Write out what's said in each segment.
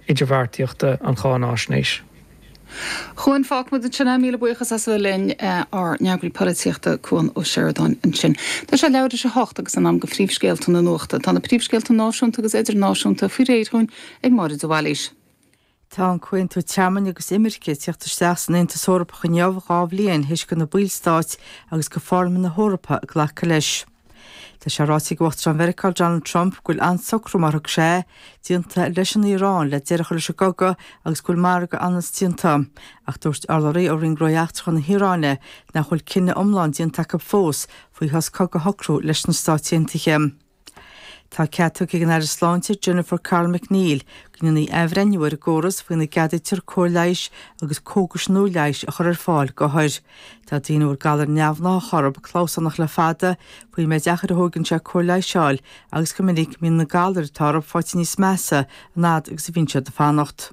idirbheartaíochta an cháinaisnéis. A Chuain, fágfaidh muid ansin é. Míle buíochas as a bheith linn, ár n-eagraí polaitíochta, Cuan Ó Seireadáin, ansin. Tá sé leathuair théis a hocht agus in am do phríomhscéalta na nuachta. Tá na príomhscéalta náisiúnta agus idirnáisiúnta faoi réir dhúinn ag Máire de Bhailís. Tá an Comhaontú Tearmainn agus Imirce ag tíocht isteach san Aontas Eorpach inniu, dhá bhliain théis do na ballstáit agus do Pharlaimint na hEorpa glacadh leis. Tá sé ráite ag Uachtarán Mheiriceá Donald Trump go bhfuil an-socrú mar a thug sé air, déanta leis an Iaráin le deireadh a chur leis an gcogadh agus go bhfuil margadh ionann's déanta. Ach dúirt urlabhraí ó Roinn Gnóthaí Eachtracha na hIaráine nach bhfuil cinneadh iomlán déanta acu fós faoi shos cogaidh a shocrú leis na Stáit Aontaithe. Tá cead tugtha ag an Aire Sláinte Jennifer Carroll MacNeill go ndéanfaí athbhreithniú ar an gcóras faoina gceadaítear cóir leighis agus cógais nua leighis a chur ar fáil d'othair. Tá daoine a bhfuil galar neamhgnáthach orthu clamhsánach le fada faoin méid achair a thógann sé cóir leighis a fháil agus go minic go mbíonn na galair atá orthu faighte níos measa an fhad agus a bhíonn siad ag fanacht.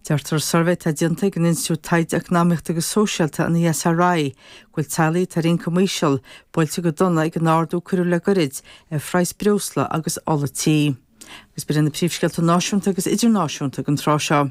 Deirtear i suirbhé atá déanta ag an Institiúid Taighde Eacnamaíochta agus Sóisialta, an ESRI, go bhfuil teaghlaigh atá ar ioncam íseal buailte go dona ag an ardú a cuireadh le goirid ar phraghas breosla agus ola tí. Agus b'in iad na príomhscéalta náisiúnta agus idirnáisiúnta ag an tráth seo.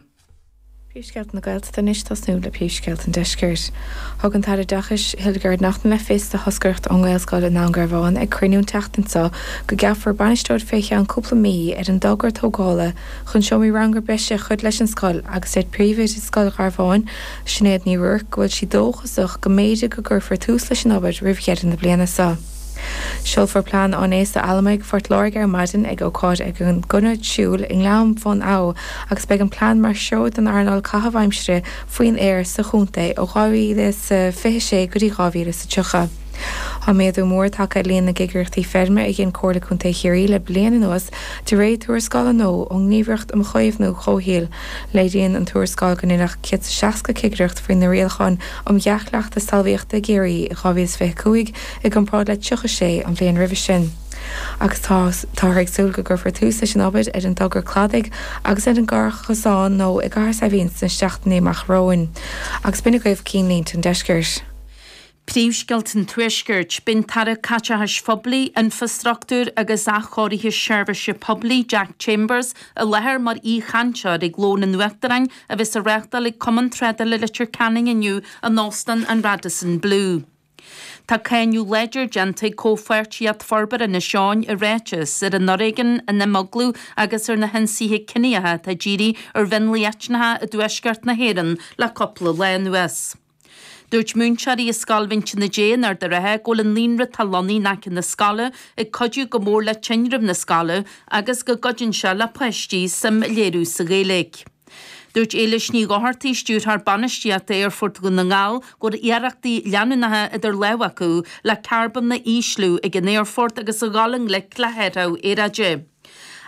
Príomhscéalta na Gaeltachta anois ag tosnú le príomhscéalta an Deiscirt. Thug an tAire Oideachais, Hildegarde Naughton le fios do thoscaireacht ón nGaelscoil i nDún Garbhán ag cruinniú an tseachtain seo go gceapfar bainisteoir fé cheann cúpla mí ar an dtogra tógála chun seomraí ranga breise a chur leis an scoil agus deir Príomhoide Scoil Gharbháin, Sinéad Ní Ruairc go bhfuil sí dóchasach go mb'fhéidir go gcuirfear tús leis an obair roimh dheireadh na bliana seo. Seolfar Plean Áineasa Allamuigh Phort Láirge ar maidin ag ócáid ag an gConair Siúil i nGleann Bhun Abha agus beidh an plean mar threoir don earnáil caitheamh aimsire faoin aer sa chontae ó 2026 go dtí 2030. Tá méadú mór tagtha ar líon na gcigireachtaí feirme a dhein Comhairle Contae Chiarraí le bliain anuas de réir tuarascála nua ón nGníomhaireacht um Chaomhnú Comhshaoil. Léiríonn an tuarascáil go ndeineadh 160 cigireacht faoi na Rialacháin um Dhea-Chleachtas Talmhaíochta i gCiarraí i 2025, i gcomparáid le 36 an bhliain roimhe sin, agus táthar ag súil go gcuirfear tús leis an obair ar an dtogra cladaigh agus ar an gclárchosán nua i gCathair Saidhbhín sna seachtainí amach romhainn, agus b'in agaibh cinnlínte an deiscirt. Príomhscéalta an tuaiscirt, beidh an tAire Caiteachais Phoiblí, Infreastruchtúir agus Athchóirithe Seirbhíse Poiblí, Jack Chambers, i láthair mar aoichainteoir ag Lón an Uachtaráin a bheas á reáchtáil ag Cumann Trádála Leitir Ceanainn inniu in Óstán an Radisson Blu. Tá cáineadh láidir déanta ag Comhpháirtíocht Forbartha Inis Eoghain i ráiteas, ar an fhoréigean, an imeaglú agus ar na hionsaithe ciníocha atá dírithe ar mhionlaigh eitneacha i dtuaisceart na hÉireann le cúpla lá anuas. Dúirt múinteoirí i Scoil Mhín Tine Dé in Ard a' Rátha go bhfuil an naíonra atá lonnaithe in aice na scoile ag cuidiú go mór le tinreamh na scoile agus go gcuireann sé le páistí suim a léiriú sa Ghaeilge. Dúirt Éilis Ní Dhochartaigh, Stiúrthóir Bainistíochta Aerfort Dhún na nGall, go raibh iarrachtaí leanúnacha idir lámha acu le carbón a ísliú ag an aerfort agus a ghabháil i ngleic le hathrú aeráide.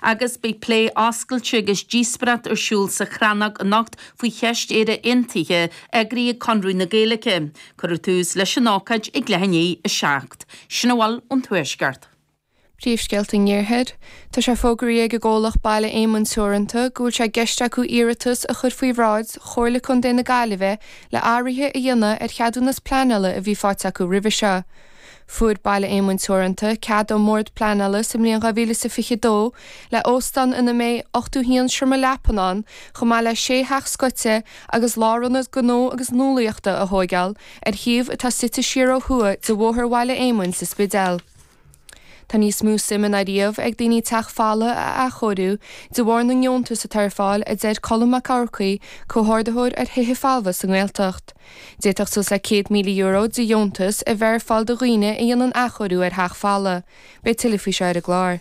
agus beidh plé oscailte agus díospoireacht ar siúl sa Chrannóg anocht faoi cheist Éire Aontaithe, eagraithe ag Conradh na Gaeilge. Cuirfear tús leis an ócáid ag leath i ndiaidh a seacht. Sin a bhfuil ón Tuaisceart. Príomhscéalta an Iarthair. Tá sé fógartha ag an gcomhlacht Baile Éamoinn Teoranta go bhfuil sé i gceist acu iarratas a chur faoi bhráid Chomhairle Contae na Gaillimhe le athruithe a dhéanamh ar cheadúnas pleanála a bhí faighte acu roimhe seo. Fuair Baile Éamoinn Teoranta cead ón mBord Pleanála sa mbliain 2022 le óstán ina mbeidh 81 seomra leapan ann chomh maith le sé theach scoite agus lárionad gnó agus nuálaíochta a thóigeáil ar shuíomh atá suite siar ó thuaidh de Bhóthar Bhaile Éamoinn sa Spidéal. Tá níos mó suime ná riamh ag daoine teach folamh a athchóiriú de bharr na ndeontas atá ar fáil, a deir Colm Mac Eachmharcaigh, Comhordaitheoir ar Thithe Folmha sa nGaeltacht. D'fhéadfadh suas le €100,000 de dheontas a bheith ar fáil do dhaoine a dhéanann athchóiriú ar theach folamh. Beidh tuilleadh faoi seo ar an gclár.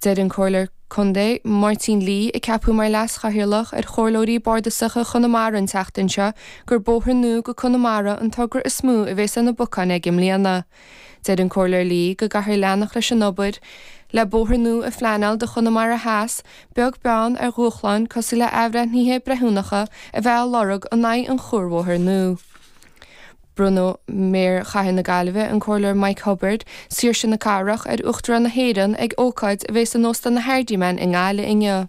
Deir an Comhairleoir Contae Máirtín Lee, a ceapadh mar Leas-Chathaoirleach ar Chomhairleoirí Bardasacha Chonamara an tseachtain seo, gur bóthar nua go Conamara an togra is mó a bheas ar na bacáin aige i mbliana. Deir an Comhairleoir Lee go gcaithfear leanacht leis an obair le bóthar nua a phleanáil do Chonamara Theas, beag beann ar dhúshláin cosúil le athbhreithnithe breithiúnacha a bheith á lorg in aghaidh an chuarbhóthair nua. Bronnfaidh Méara Chathair na Gaillimhe, an Comhairleoir Mike Cubbard, Saoirse na Cathrach, ar Uachtarán na hÉireann ag ócáid a bhéas in Óstán an Hardiman i nGaillimh inniu.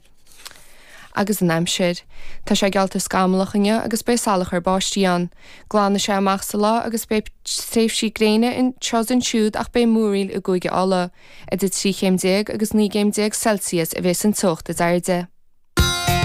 Agus an aimsir. Tá sé geallta scamallach inniu agus beidh salachar báistí ann. Glanfaidh sé amach sa lá agus beidh tréimhsí gréine anseo is ansiúd ach beidh múraíl i gCúige Uladh. Idir 13 chéim agus 19 gcéim Celsius a bhéas an teocht is airde.